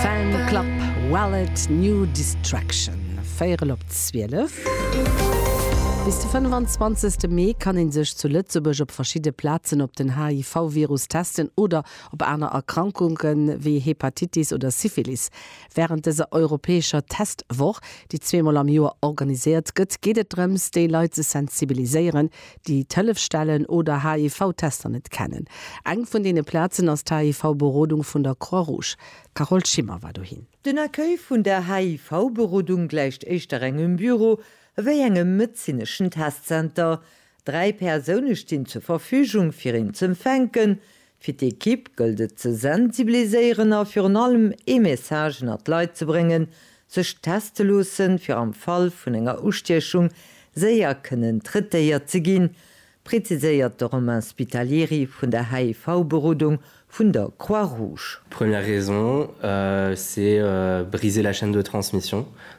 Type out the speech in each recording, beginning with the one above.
Fan Club Wallet New Distraction, véierel op 12. Bis de 25 Mee kann ee sech zu Lëtzebuerg op verschidde Plazen op den HIV-Virus testen oder op aner Erkrankunke wéi Hepatitis oder Syphilis. Wärend dëser europäescher Testwoch, déi zweemol am Joer organiséiert gëtt, geet et drëms, déi Leit ze sensibiliséieren, déi d'Hëllefsstellen oder HIV-Tester net kennen. Eng vun deene Plazen ass d'HIV-Berodung vun der Croix Rouge. D'Carole Schimmer war dohin. Den Accueil vun der HIV-Berodung gläicht éischter engem Büro ewéi engem medezineschen Testzenter. Dräi Persoune stinn zur Verfügung, fir een z'empfänken, Fir d'Equipe gëllt et ze sensibiliséieren a virun allem ee Message ënnert d'Leit ze bréngen, sech teste loossen, fir am Fall vun enger Ustiechung séier kënnen traitéiert ze ginn, preziséiert de Romain Spitalieri vun der HIV-Berodung vun der Croix-Rouge. Première raison, c'est briser la chaîne de transmission,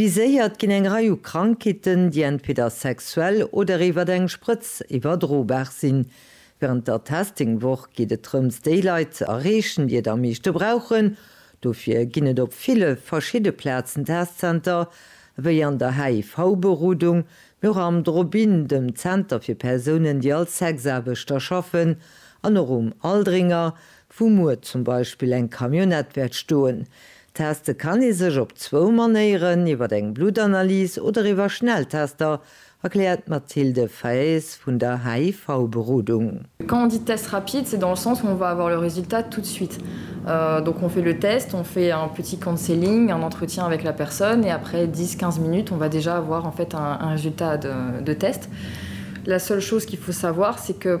Viséiert ginn eng Rei u Krankheeten, déi entweder sexuell oder iwwert eng Sprëtz iwwerdrobar sinn. Wärend der Testing-Woch geet et drëms, déi Leit ze erreechen, déi et am meeschte brauchen. Dofir ginn et op ville verschidde Plazen Testzenter, wéi an der HIV-Berodung, mee och am Drop-In, dem Zenter fir Persounen, déi als Sexaarbechter schaffen, an och um Aldringer, wou muer zum Beispill eng Camionnette wäert stoen. Teste kann ee sech op zwou Manéieren, iwwer eng Bluttanalys oder iwwer Schnelltester, erkläert d'Mathilde Faes vun der HIV-Berodung. Quand on dit test rapide, c'est dans le sens où on va avoir le résultat tout de suite. Donc on fait le test, on fait un petit counseling, un entretien avec la personne et après 10, 15 minutes, on va déjà avoir en fait un résultat de test. La seule chose qu'il faut savoir, c'est que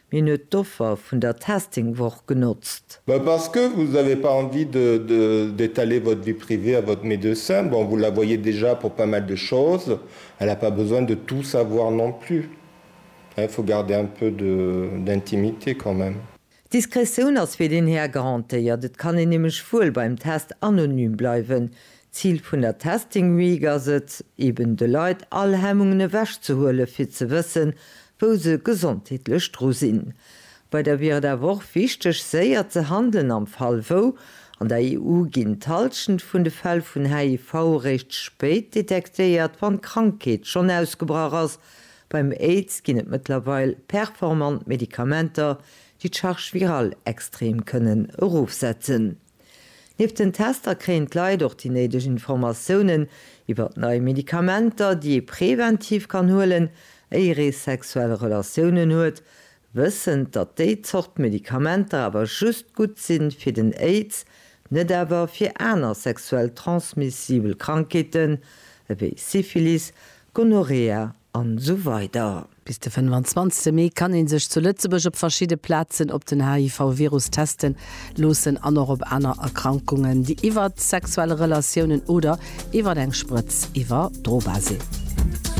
Mir hunn et d'Offer vun der Testing-Woch genotzt. Mais parce que vous avez pas envie de de d'étaler votre vie privée à votre médecin, bon vous la voyez déjà pour pas mal de choses, elle a pas besoin de tout savoir non plus hein, il faut garder un peu de d'intimité quand même. D'Diskretioun ass fir deen Här garantéiert, et kann een nämlech wuel beim Test anonym bleiwen, D'Zil vun der Testing Week ass et, eben de Leit all Hemmungen ewech ze huelen, fir ze wëssen, wou se gesondheetlech dru sinn. Bei der wier et awer och wichteg, séier ze handelen am Fall wou. An der EU ginn d'Halschent vun de Fäll vun HIV eréischt spéit detektéiert, wann d'Krankheet schonn ausgebrach ass. Beim Aids ginn et mëttlerweil performant Medikamenter, déi d'Charge virale extrem kënnen erofsetzen. Nieft den Tester kréien d'Leit och déi néideg Informatiounen iwwert nei Medikamenter, déi ee preventiv kann huelen, éier ee sexuell Relatiounen huet, wëssend, datt déi Zort Medikamenter awer just gutt si fir den Aids, net awer fir aner sexuell transmissibel Krankheeten ewéi Syphilis, Gonorrhea an esou weider. Bis de 25 Mee kann ee sech zu Lëtzebuerg op verschidde Plazen op den HIV-Virus teste loossen an och op aner Erkrankungen, déi iwwert sexuell Relatiounen oder iwwert eng Sprëtz iwwerdrobar sinn.